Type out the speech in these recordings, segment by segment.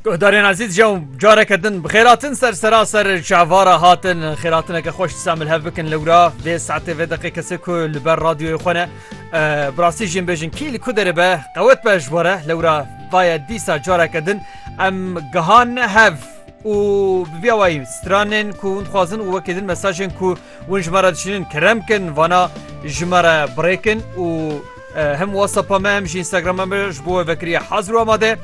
Guhdarên Ezîz jew careke din bi xêratin ser seraser çavara hatin xêratineke xweş disa min hev bikin lewra vê saetê vê deqê kesê ku li ber radyoyê xwe ne bi rastî jî bêjin kî li ku derê be qewet be ji were lewra vaye dîsa careke din em gihan hev û bi vîya wayî stranên ku hûn dixwazin û wekê din mesajên ku Hûn ji me re dişînin kerem kin vana ji me re birêkin û hem WhatsAppa me hem jî Instagrama me ji bo we vekiriye hazir û amade.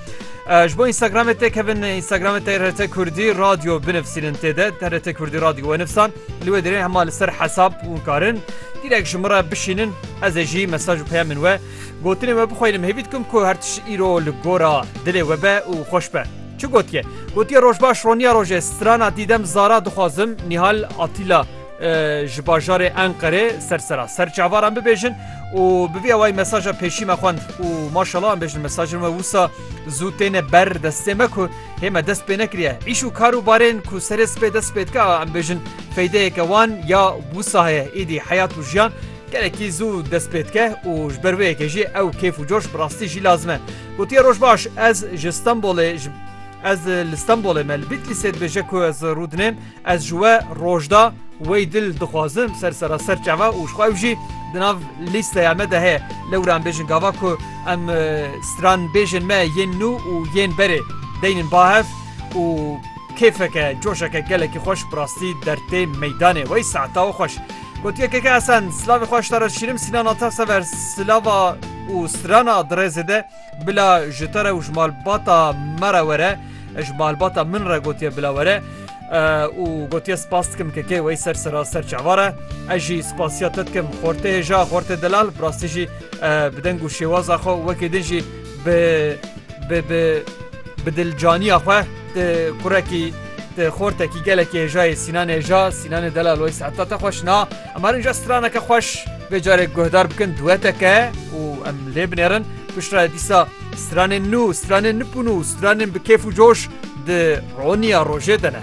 Ji bo Instagramê tê kevin Instagramê TRT Kurdî radyo binivsînin tê de TRT Kurdî radyo we nifsan li wê dirê hema li ser hesab hûn karin direk ji min re bişînin ez ê jî mesaj û peyamên we Gotinên we bixweynim hêvî dikim ku her tişt îro li gora dilê we be û xweş be. Çi gotiye? Gotiye rojbaş roniya rojê strana dîdem zara dixwazim Nîhal Atîla ji bajarê Enqerê ser sera ser çavaran bibêjin û bi vî awayî mesaja pêşî me xwend û maşala em bêjin mesajin we wisa zû têne ber destê me ku hê me dest pê nekiriye îş û kar û barên ku serê spê dest pê dike em bêjin feydeyeke wan ya wisa heye êdî heyat û jiyan Gelekî zû dest pê dike û ji ber wê yekê jî ew kêf û coş bi rastî jî lazim e. Gotiye roj baş ez ji Stenbolê ji Ez li Stenbolê me li Bîtlîsê dibêje ku ez rû dinêm, ez ji we rojda wey dil dixwazim ser seraser çava û ji xwe ew jî di nav lîsteya me de heye. Lewra em bêjin gava ku em stranbêjên me yên nû û yên berê deynin ba hev û kêfeke, coşeke gelekî xweş bi rastî dertê meydanê wey saeta û xweş. Gotiye keke Esen, silavê xwe ji te re dişînim, Sînana te sever silava û strana di rêzê de, bila ji te re û ji malbata me re were, ji malbata min re gotiye bila were û gotiye spas dikim kekê wey ser sera ser çavar e, ez jî spasiya te dikim xortê hêja, xortê delal, bi rastî jî bi deng û şêwaza xwe û wekî din jî Bi bi bi bi dilcaniya xwe ti kurekî ti xortekî gelekî hêja yê Sînan hêja Sînanê delal wey saeta te xweş na em herin ja straneke xweş vê carê guhdar bikin dueteke û em lê binêrin piştre dîsa stranên nû stranên nipûn û stranên bi kêf û coş di roniya rojê de ne.